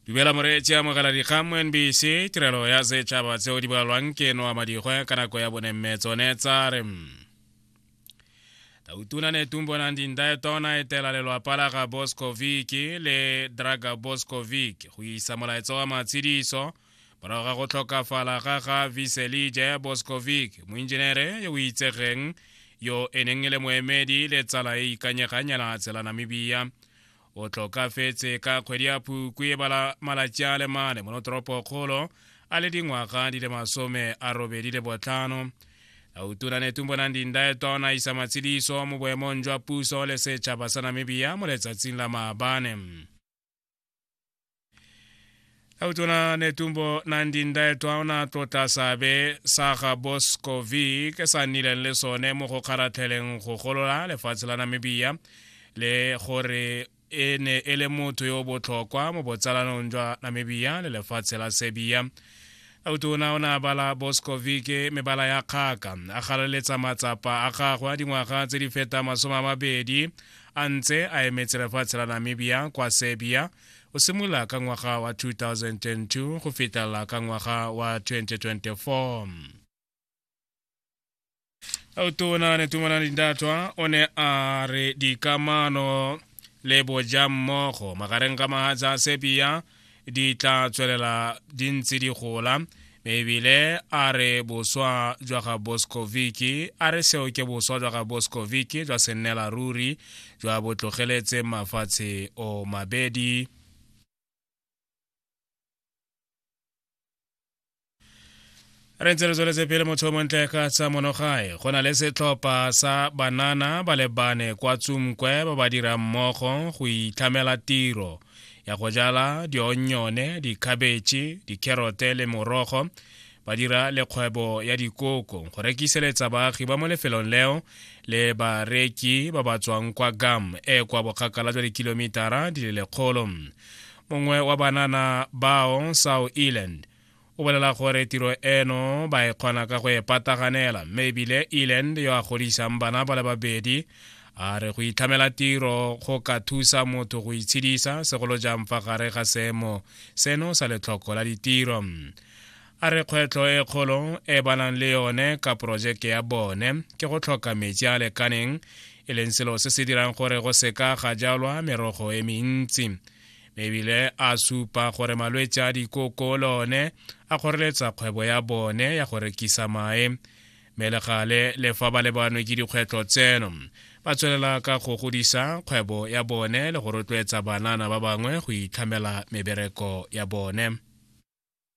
dumela moreetsi amogela dikgang mo nbc tirelo ya setšhaba tseo di balwang ke noa madikgwe ka nako ya bone mme tsone tsa re tautuna ne tumbo nang dindae tona e tela lelwapa la ga boskovic le draga boskovic go isa molaetsa wa matshidiso morago ga go tlhokafala ga ga viselije boskovic moinjenere yo o itsegeng yo e neng e le moemedi le tsala e ikanyegang ya naga tshela namibia o tlokafetse ka kgwedi ya phukwi bala malatsi a le mane mono toropokgolo a le dingwaga di le masome a robedi le botlhano autuna netumbo nang dindaeto a isa matshidiso mo boemong jwa puso le setšhaba sa namibia mo letsatsing la maabane a utona netumbo nandindae twaona tlotla sabe sa ga boscovic sa nnileng le sone mo go kgaratlheleng go golola lefatshe la namibia le gore e ne e le motho yo botlhokwa mo botsalanong jwa namibia le lefatshe la serbia autona o ne a bala boskovike mebala ya kgaka a galeletsa matsapa a gagwe a dingwaga tse di feta masome a mabedi a ntse a emetse lefatshe la namibia kwa serbia o simolola ka ngwaga wa 2002 go fetela ka ngwaga wa 2024 tona ne tumalana dintatwa o ne a re dikamano le boja mmogo magareng ga mahatsa sepia di tla tswelela di ntse di gola ebile a re boswa jwa ga boscoviki a re seo ke boswa jwa ga boscoviki jwa sennela ruri jwa botlogeletse mafatshe o mabedi re ntse re tsweletse pele motho o montle ka tsa monogae go na le setlhopha sa banana ba lebane kwa tsumkwe ba ba dirang mmogo go itlhamela tiro ya go jala dionyone dikhabetšhe dikherote le morogo ba dira le kgwebo ya dikoko go rekiseletsa baagi ba mo lefelong leo le bareki ba ba tswang kwa gam e kwa bokgakala jwa dikilomitara di le lekgolo mongwe wa banana bao sao eland o bolela gore tiro eno ba e kgona ka go e pataganela mme ebile eland yo a godisang bana ba le babedi a re go itlhamela tiro go ka thusa motho go itshedisa segolo jang fa gare ga seemo seno sa letlhoko la ditiro A re kgwetlho e kgolo e banang le yone ka porojeke ya bone ke go tlhoka metsi a lekaneng e leng selo se se dirang gore go seka ga jalwa merogo e mentsi mme ebile a supa gore malwetse a dikoko le one a kgoreletsa kgwebo ya bone ya go rekisa mae mme le gale le fa ba lebanwe ke dikgwetlho tseno ba tswelela ka go godisa kgwebo ya bone le go rotloetsa banana ba bangwe go itlhamela mebereko ya bone